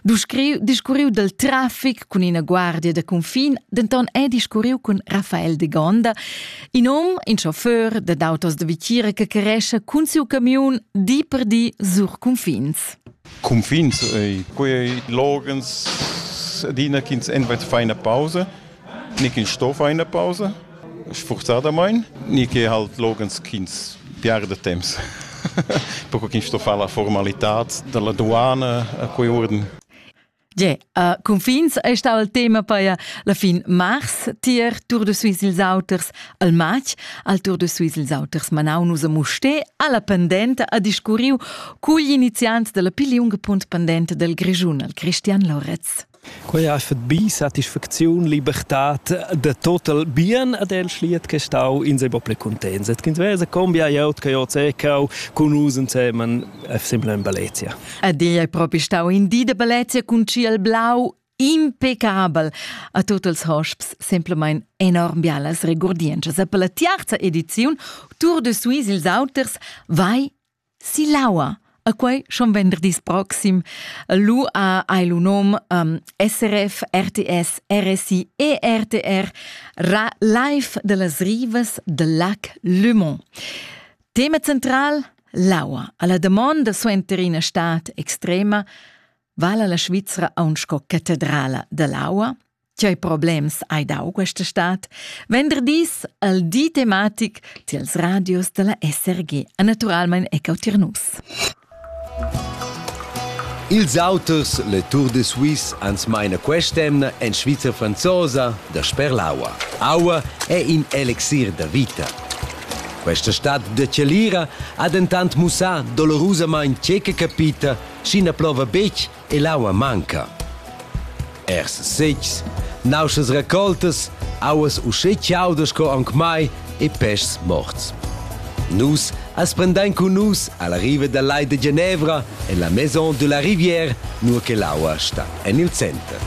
discurriu dal traffic cun ina guardia da confin, denton è discurriu cun Rafael de Gonda, in hom, in chauffeur da autos da Vitira che cresce cun siu camion di per di sur confins. Confins, quei logens adina ch'ins envert fa una pausa ni ch'il sto fa ina pausa sfurzadamain, ni che halt loghens ch'ins piarda temps. Perquai ch'ins sto far la formalitad dalla duana a quei urden. Ge, uh, confins è stau il tema per la fin mars tier Tour de Suisse ils auters al match al Tour de Suisse ils auters manau nus a Musté alla pendenta a discurriu cugl iniziant della pigliunga punt pendenta del Grischun al Christian Loretz. Quei ha fat bi satisfacziun, libertad da total bien ad el schliet che stau in sei propi contents et ch'ins vesa combia glieud che ho zecau cun us ensemen simpel in Baletia. Ed ei ei propi stau in di da Baletia cun ciel blau impecabel a tuts els hosps semplamein enorm bialas regurdientschas. E per la tiarza ediziun Tour de Suisse ils auters vai Silaua. A quei schon venderdis proxim lu ha hai lu nom um, SRF, RTS, RSI e RTR ra live dellas rivas de lac Le Mont. Tema central l'aua. Alla domanda suenter ina stat extrema vala la Svizzera aun sco catedrala dell'aua Tgei problems hai dau questa stad? Venderdis al di tematic tiels radios dalla SRG a naturalmein ecco tir nus. Ils auters, le Tour de Suisse, ans maina quest'emna en Svizra franzosa da sper l'aua. Aua è in elixir da vita. Questa stad de Celira ha dentant mussà dolorusamain tge che capita, sch'i na plova betg e l'aua manca. Ers setgs, nauschas recoltas, auas uschè chaudas sco aunc mai e peschs morts. Nus as prendein cun nus alla riva dal Lai de Genevra en la Maison de la Rivière, nur che l'aua sta en il center.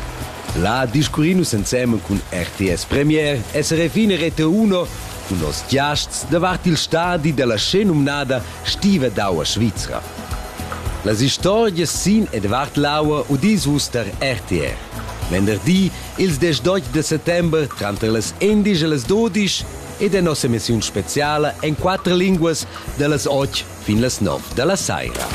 Là discurrin nus ensemen cun RTS Premier e SRFin Rete1 cun nos giasts davart il stadi della scennumnada stiva d'aua svizra. Las istorgias sin e davart l'aua udis vus tar RTR. Venderdi, ils diesch d'otg da settember, tranter las endisch e las dudisch, ed è nossa emissiun speziala en quatter linguas da las otg fin las nov da la saira.